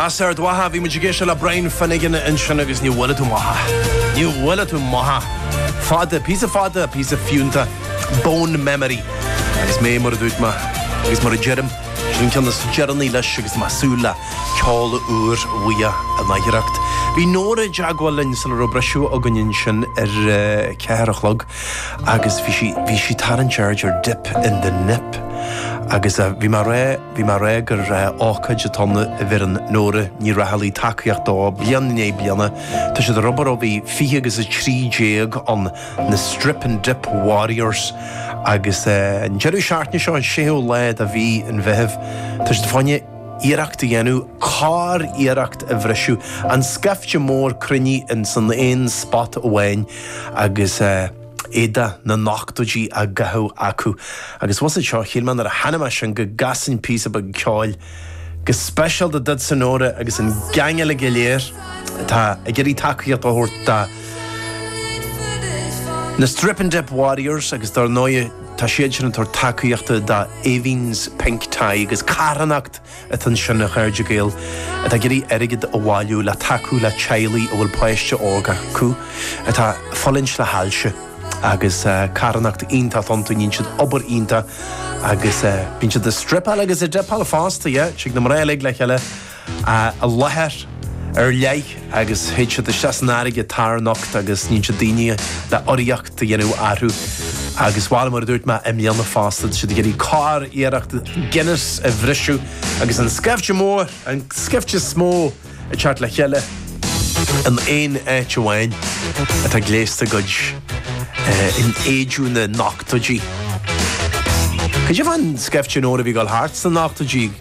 As Ard Mhacha, bhí muid ag éisteacht le Brian Finnegan ansin agus ní bhfuil tú, ní bhfuil tú maith. Fada, píosa fada, píosa fiúnta. Bone memory. Agus mé, mar a dúirt mé, agus mar a deirim, seo an ceann is deireanaí leis agus tá súil le ceol úr uaidh in athuair. Bhí Nóra ag teagmháil linn sula raibh briseadh againn ansin ar ceathair a chlog agus bhí sí, bhí sí tarraingt aird ar dip in the nip agus bhí mé a rá, Bhí mé a rá gur ócáid a dtugann, a bheireann Nóra Ní Raghallaigh tacaíocht dó bliain i ndiaidh bliana. Tá siad ag obair ó bhí 20 agus 13 ann, na Strip and Dip Warriors, agus an deireadh seachtaine seo, an séú lá de mhí an Mheithimh, tá siad fá choinne iarracht a dhéanamh curiarracht a bhriseadh, an scaifte is mó a cruinníodh insan aon spot amháin agus. éadaí na n-ochtóidí á gcaitheamh acu, agus bhuel, seo, shíl mé nuair a chonaic mé sin go gcasfainn píosa beag ceoil, go speisialta duitse, a Nóra, agus an gaing uilig go léir atá ag iarraidh tacaíocht a thabhairt do na Strip-and-Dip Warriors, agus dár ndóigh, tá siad sin ag tabhairt tacaíochta do Aoibheann's Pink Tie, agus carthanacht. atá ansin a chairde Gael atá ag iarraidh airgead a bhailiú le tacú le teaghlaigh a bhfuil páiste óg acu atá ag fulaingt le hailse agus carthanacht iontach atá iontu, níonn siad obair iontach agus bíonn siad ag stripeáil agus ag dipeáil fosta, yeah, tig na mná uilig le chéile i láthair ar leith agus théid siad isteach san fharraige tarnocht agus bíonn siad, daoine le urraíocht. a dhéanamh orthu agus bhuel mar a dúirt mé i mbliana fosta tá siad ag iarraidh curiarracht Guinness a bhriseadh agus an scaifte mór an scaifte is mó ag teacht le chéile in aon áit amháin atá gléasta i gcuid, in éadaí na n-ochtóidí. Cad é an scaifte mór a bhí ag dul thart sna n-ochtóidí?